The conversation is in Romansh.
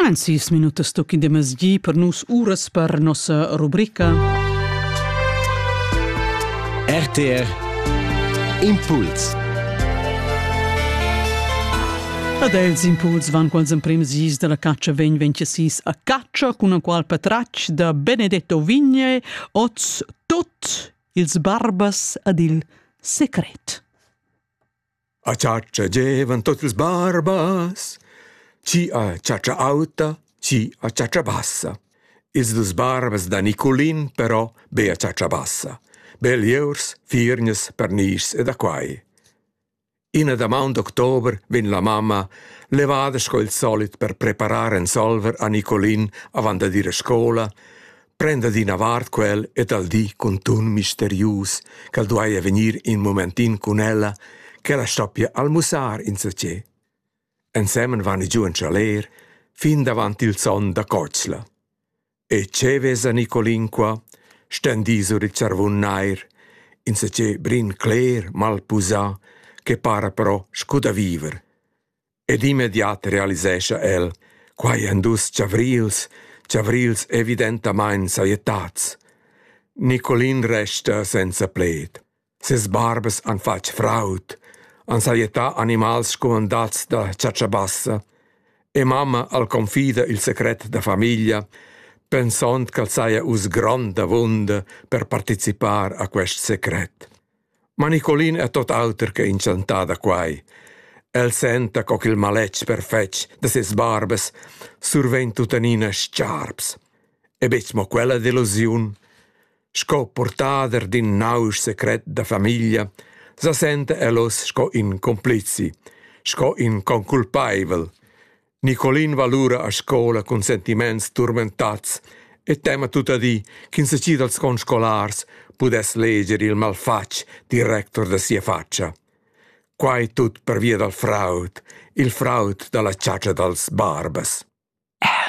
En sis minutas tocca in masgi per nus uras per nossa rubrica. RTR Impuls Ad els impuls van quals emprims dis della caccia vegn vencesis a caccia con un qual patratg da Benedetto Vigne oz tot ils barbas ad il secret. A chatscha gievan tot ils barbas, chi a chatscha auta, chi a chatscha bassa. Ils dus barbas da Niculin però be a chatscha bassa. Be lieurs, firgnas, pernischs e da quai. Ina damaun d'october vegn la mamma levada sco il solit per preparar ensolver a Nicolin avant da dir a scola Prenda d'ina vart quel e dal di cun tun misterius ch'el duaja vegnir in momentin cun ella, ch'ella stoppia almussar insatge. Ensemen van i giu en chaler fin davant il son da cotschla. E che vesa Nicolin qua, stendì sur il charvun nair, insatge brin cler, malpusà, che para però scu da viver. Ed immediat realisescha el: quai èn dus chavrils, chavrils evidentamain sajettads. Nicolin resta senza pled. Ses barbas han fatg fraud, han sajettà animals scumandats da chatschabassa e mamma al confida il secret da famiglia, pensond ch'el saja uss grond avunda per participar a quest secret. Ma Nicolin è tot auter che incentà da quai. El senta co ch'il maletg perfetg da ses barbas survegn tuttenina stgarps. E betg mo quella delusiun. Sco purtader d'in nausch secret da famiglia sa senta el oz sco in complizi, sco in conculpaivel. Nicolin va lura a scola cun sentiments turmentats e tema tuttadi ch'ins gi dals conscolars pudess leger il malfatg director da sia fatscha. Quai tut pervia dal fraud, il fraud da la chatscha dals barbas.